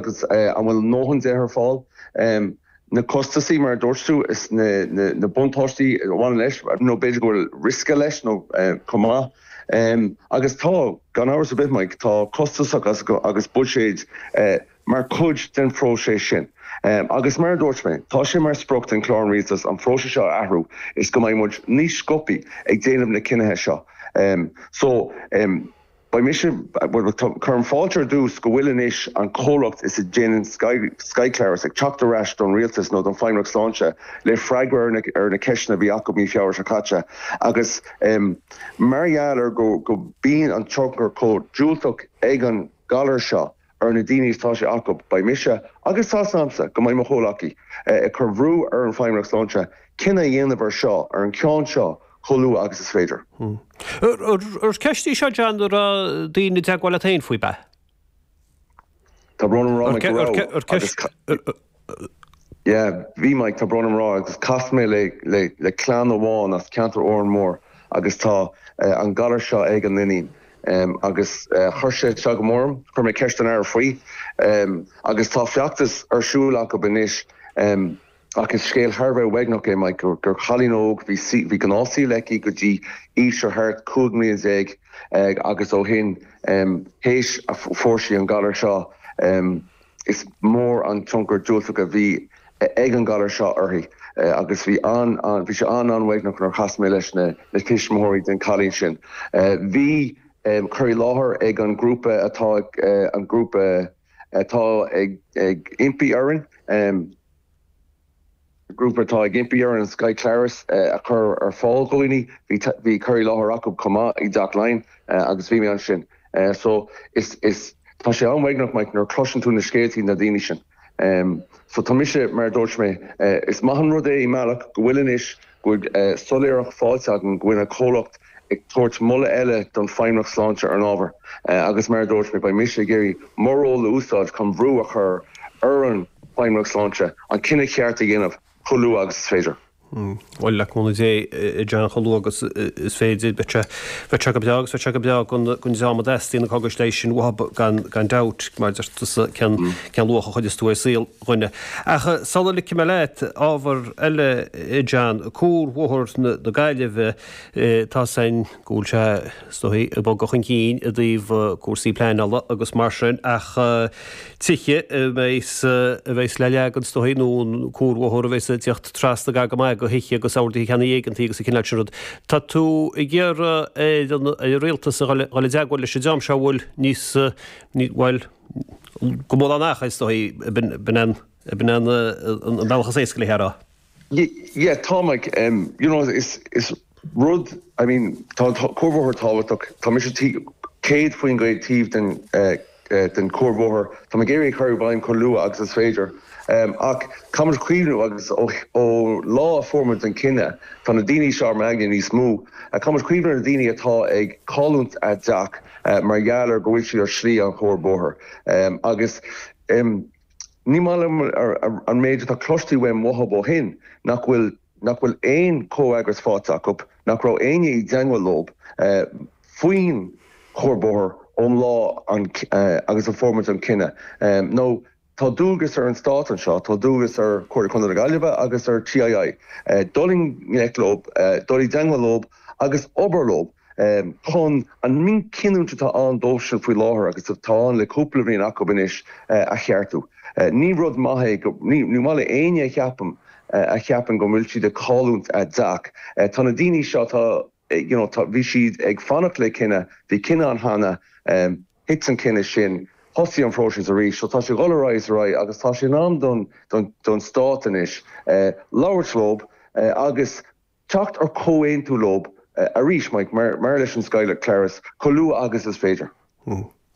Agus an bhfuil a ndóthain de ar fáil? Na costasaí, mar a dúirt tú, is na buntáistí a bhaineann leis, nó b'fhéidir go bhfuil riosca leis chomh maith. Agus tá, gan amhras ar bith, Mike, tá costasacha agus buiséid mar chuid den phróiseas sin. Agus mar a dúirt mé, tá sé mar sprioc den Chlár an Rialtais an phróiseas seo a athrú is go mbeidh muid níos sciobthaí ag déanamh na cinnithe seo. Beidh mise, bhuel, cuirim fáilte ar dtús go bhfuil anois an comhlacht is a dhéanann Skyclarys ag teacht ar ais don Rialtas nó don Feidhmeannacht Sláinte le freagra ar na ceisteanna a bhí acu mí Feabhra seo caite agus mar gheall ar go mbíonn an tionchar chomh diúltach ag an ghalar seo ar na daoine is tá sé acu, beidh mise, agus tá súil agamsa go mbeidh mo chomhghleacaí, ag cur bhrú ar an Feidhmeannacht Sláinte cinneadh a dhéanamh ar seo, ar an ceann seo chomh luath agus is féidir. Ar cheist í seo, John, a raibh daoine i dteagmháil leat féin faoi, ab ea? Tá brón orm a rá Mike go raibh, agus caithfidh. Yeah, bhí Mike tá brón orm a rá agus chas mé le le le clann amháin as ceantar Órán Mór agus tá eh an galar seo ag an iníon em agus eh chuir sé isteach go mór orm, chuir mé ceist don Aire faoi em agus tá feachtas ar siúl acub anois em ach is scéal thar a bheith uaigneach é Mike gur gur chailín óg bhí saoi bhí gnáth saoil aici go dtí aois ar thart cúig mbliana déag eh agus ó shin em théis a fuair sí an galar seo em Is mór an tionchar diúltach a bhí ag an ghalar seo uirthi agus bhí sé an-mhaoithneach nuair a chas mé leis na tuismitheoirí den chailín sin. Bhí cur i láthair ag an ghrúpa atá an ghrúpa atá ag impí orainn. grúpa atá ag impí orainn Skyclarys a chur ar fáil do dhaoine. Bhí bhí cur i láthair acu chomh maith i dTeach Laighean agus bhí mé ansin. So is is tá sé an-mhaoithneach Mike nuair a chloiseann tú na scéaltaí na daoine sin. So tá mise mar a dúirt mé, is maith an rud é i mbealach go bhfuil anois Bheadh soiléireacht faighte againn go bhfuil an comhlacht ag tabhairt moladh eile don Feidhmeannacht Sláinte ar an ábhar agus mar a dúirt mé, beidh mise ag iarraidh mo ról a úsáid chun brú a chur ar an Feidhmeannacht Sláinte an cinneadh ceart a dhéanamh chomh luath agus is féidir. Bhuel, le cúnamh Dé, a John, chomh luath agus is féidir. Beidh sé go breá agus beidh sé go breá don dream a dteastaíonn na cógais leighis sin uathub gan dabht, mar a deir tusa, cén luach a chuireas tú ar saol. duine. Ach sula ligfidh mé leat ábhar eile John, cuarbhóthar na Gaillimhe, tá a fhios againn go bhfuil sé is dóigh ag bogadh chun cinn i dtaobh cúrsaí pleanála agus mar sin ach tithe a bheas a bheas le leagan is dóigh nó an cuarbhóthar a bheas ag teacht trasna gar go maith do thithe agus orduithe ceannaigh éigeantaigh agus an cineál sin rud. Tá tú ag iarraidh ar an ar an rialtas a dhul a dhul i dteagmháil leis an dream seo a bhfuil níos bhuel go mórán ach, is dóigh, b'in an bealach is éasca léi a rá. Yeah, tá mé, you know, is, is rud, I mean, tá an cuarbhóthar tábhachtach, tá mise céad faoin gcéad taobh thiar den chuarbhóthar, tá mé ag iarraidh é a chur i bhfeidhm chomh luath agus is féidir. Ach caithfimid cuimhniú agus ó, ó lá a fuair muid an cinneadh, tá na daoine seo ar m'aigne níos mó, caithfimid cuimhniú ar na daoine atá ag cáilliúint a dteach, mar gheall ar go bhfuil siad ar shlí an chuarbhóthair agus ní maith liom an méid atá cloiste agam uathub ó shin nach bhfuil nach bhfuil aon chomhfhreagras fáite acub, nach raibh éinne i dteangmháil leob faoin chuarbhóthar ón lá agus a fuair muid an cinneadh nó Tá dualgas ar an Stát anseo, tá dualgas ar Chomhairle Chontae na Gaillimhe agus ar TII, dul i ngleic leob, dul i dteangmháil leob agus obair leob chun an mhíchinniúint atá ann dóibhsean faoi láthair agus atá ann le cúpla bliain acub anois, a cheartú. Ní rud maith é go, ní maith le éinne a cheapadh, a cheapann go bhfuil siad ag cáilliúint a dteach. Tá na daoine seo, tá, you know, tá, bhí siad ag fanacht le cinneadh, bhí cinneadh ann cheana. thit an cinneadh sin, thosaigh an phróiseas arís. So tá sé ag dul ar aghaidh is ar aghaidh agus tá sé in am don, don, don Stát anois labhairt leob agus teacht ar comhaontú leob arís, Mike, mar, mar leis an Scoil Chláir, chomh luath agus is féidir.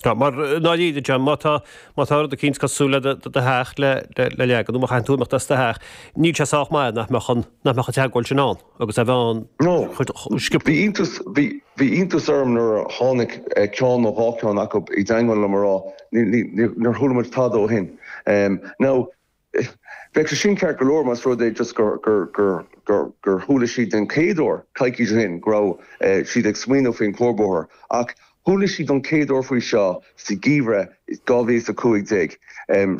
Tá, mar ndáiríre, John, má tá, má tá rud eicínt cosúil le do, do theach le, le, le leagan, nó má chaitheann tú imeacht as do theach, níl sé sách maith nach mbeadh an, nach mbeadh an teagmháil sin ann. agus a bheith ann sciobtha. Bhí iontas orm nuair a tháinig ceann nó dhá cheann acu i dteagmháil liom a rá nár chuala muid tada ó shin. Now, bheadh sé sin ceart go leor más rud é just gur chuala siad den chéad uair coicís ó shin go raibh siad ag smaoineamh faoin chuarbhóthar, ach chuala siad don chéad uair faoi seo sa gheimhreadh 2015.